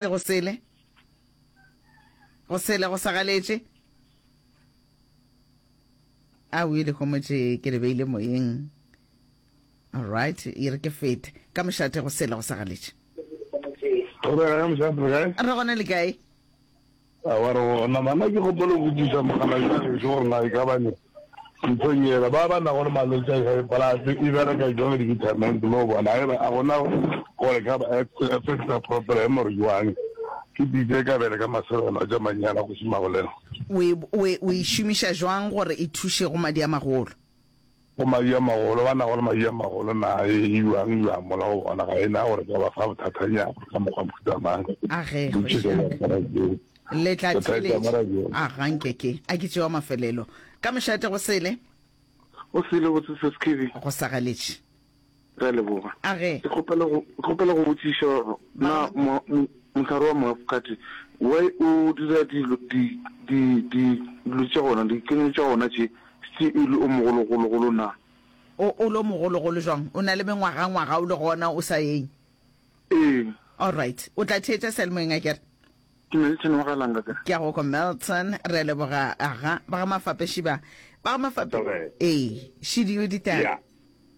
Go sele, go sele go sa galetše. A o ile homotše ke le beile moyeng. All right, e re ke fete. Ka mošate go sele go sa galetše. Go bega ka mošate, guys. Re gona le kae? A wa re go ona, Mama, ke gopola go botšiša mogala yo gešo gore na e ka ba ne nthong yela ba ba nago le malwetši a high blood e bereka jwang di-vitamins mo bona e re a gona gore ka ba affecta proper e more jwang ke dite ka bele ka maserelo tša manyana go šimagolena. O e šomiša jwang gore e thuše go madi a magolo? Go mayu a magolo, ba nago le mayu a magolo, na e yuang yuang mola go bona, ga e na gore ka ba fa bothathanyana ka mokgwa mohuta mang. A ge go šaka. Le tla theletša. A ga nke ke a ke tšewa mafelelo. Ka mošate go sele. Go sele botse, Ses'Khibi. Go sa galetše. Re a leboga. A ge. Ke kgopela go ke kgopela go botšiša gore na mo mo- mohlare wa moafokate why o dira dilo di di di dilo tša gona dikenyong tša gona tše tše e le o mogologologolo na? O o lo mogologolo jwang? O na le mengwaga ngwaga o le gona o sa eng? Ee. All right. O tla theetša sealemoyeng a kere. Ke Milton wa ga Langa ka. Ke a go kwa Milton. Re a leboga aga ba ga Mafape Šiba. Ba ga Mafape. Ee. Šidio ditaba.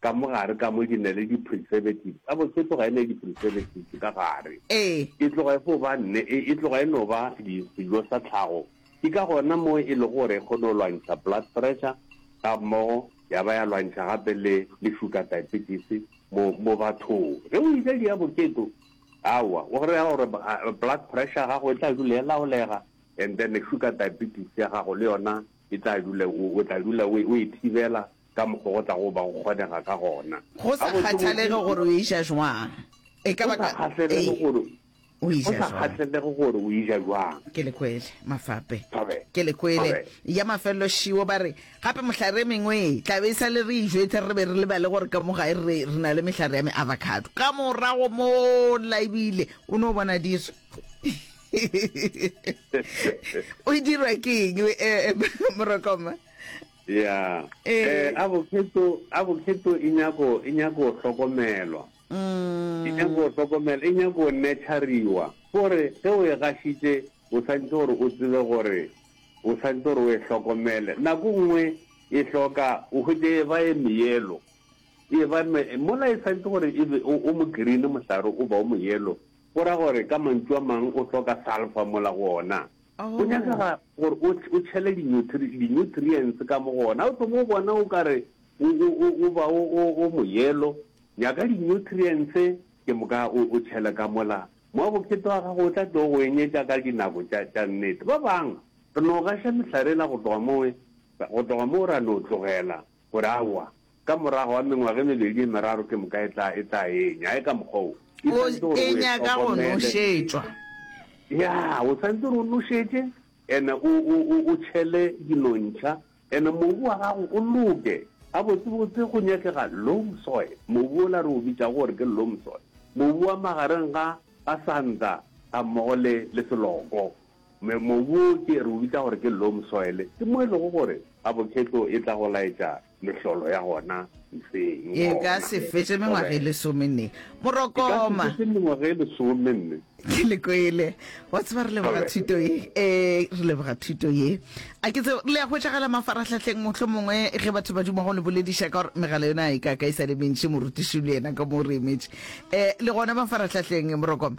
Ka mo gare ka mo ke na le di-preservatives. Gabotse e tloga e na le di-preservatives ka gare. Ee. E tloga e fo ba nne, e, e tloga e no ba di, sejo sa tlhago. Ke ka gona mo e lego gore e kgone go lwantšha blood pressure, ga mmogo ya ba ya lwantšha gape le, le sugar diabetes mo, mo bathong. Ge o e ja di avocado, aowa, o kry-a gore ba, blood pressure ya gago e tla dula e laolega, and then sugar diabetes ya gago le yona e tla dula, o, o tla dula o, o e thibela ka mokgwa go tlago ba go kgonega ka gona. Go sa kgathalege gore o e ja jwang, e ka ba ka, ee, o e ja jwang. Go sa kgathalege gore o e ja jwang. Ke le kwele, mafape. Ke le kwele. Ya mafelelo šiwo ba re, gape mohlare e mengwe e tla be e sa le re e jwetsa, re be re lebale gore ka mo gae re re na le mehlare ya me-avocado. Ka morago mola e bile o no bona diso. O dirwa ke eng, Morokoma? Ya. Eh, a bokheto, a bokheto e nyako, e nyako hlokomelwa. E nyako hlokomela, e nyako nurturiwa. Gore, ge o e gašitše, o santse gore o tsebe gore, o santse gore o e hlokomele. Nako nngwe e hloka, o hwetše e ba e meyelo. E ba me, mola e santse gore e be, o, o mo green mohlare, o ba o mo yellow. Go ra gore, ka mantšu a mang, o hloka sulphur mola go ona. Go nyakega gore o o tšhele dinyutri dinyutrientse ka mo go ona. O thoma o bona o ka re o o o o ba o o o moyelo, nyaka dinyutrientse ke moka o o tšhele ka mola. Mowa bokete wa gago o tla tlo go enyetša ka dinako tša tša nnete. Ba bang re no gaša mehlare yela go tloga mo go tloga mo ra no tlogela Gore, Aowa, ka morago ga mengwaga e mebedi e meraro ke moka e tla, e tla enya. A e ka mokgwa wo. E O, swanetše gore e o e nyaka go hlokomele. nošetšwa. Ya, o swanetše gore o nošetše, ene o, o, o, o tšhele dinontšha, ene mobu wa gago o loke. Gabotsebotse go nyakega loam soil, mobu wola re o bitšago gore ke loam soil, mobu wa magareng ga, ga santa gammogo le, le seloko. Mobu wo ke re o bitsa gore ke loam soil, ke mo e lego gore avocado e tla go laetša mehlolo ya gona mpšeng. E ka se fetše mengwaga e lesomenne. Morokoma! E ka se fetše mengwaga e lesomenne. Ke le kwele. Wa tseba re leboga thuto ye. Ee, re leboga thuto ye. A ke tseo, le a hwetšagala mafarahlahleng mohlomongwe ge batho ba duma go le bolediša ka gore megala yona a e ka ka e sa le mentši, morutiši le yena ka mo o re emetše. Eh, le gona mafarahlahleng, Morokoma?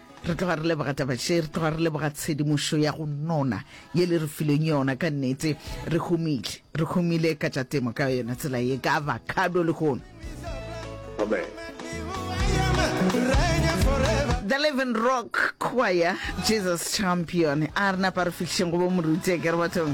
Re tloga re leboga taba še, re tloga re leboga tshedimošo ya go nona ye le re fileng yona. Ka nnete re humile, re humile ka tša temo ka yona tsela ye, ka avocado le hono. Amen. The Living Rock Choir, Jesus Champion. A re napa re fihlišeng go bo moruti a kere bathong.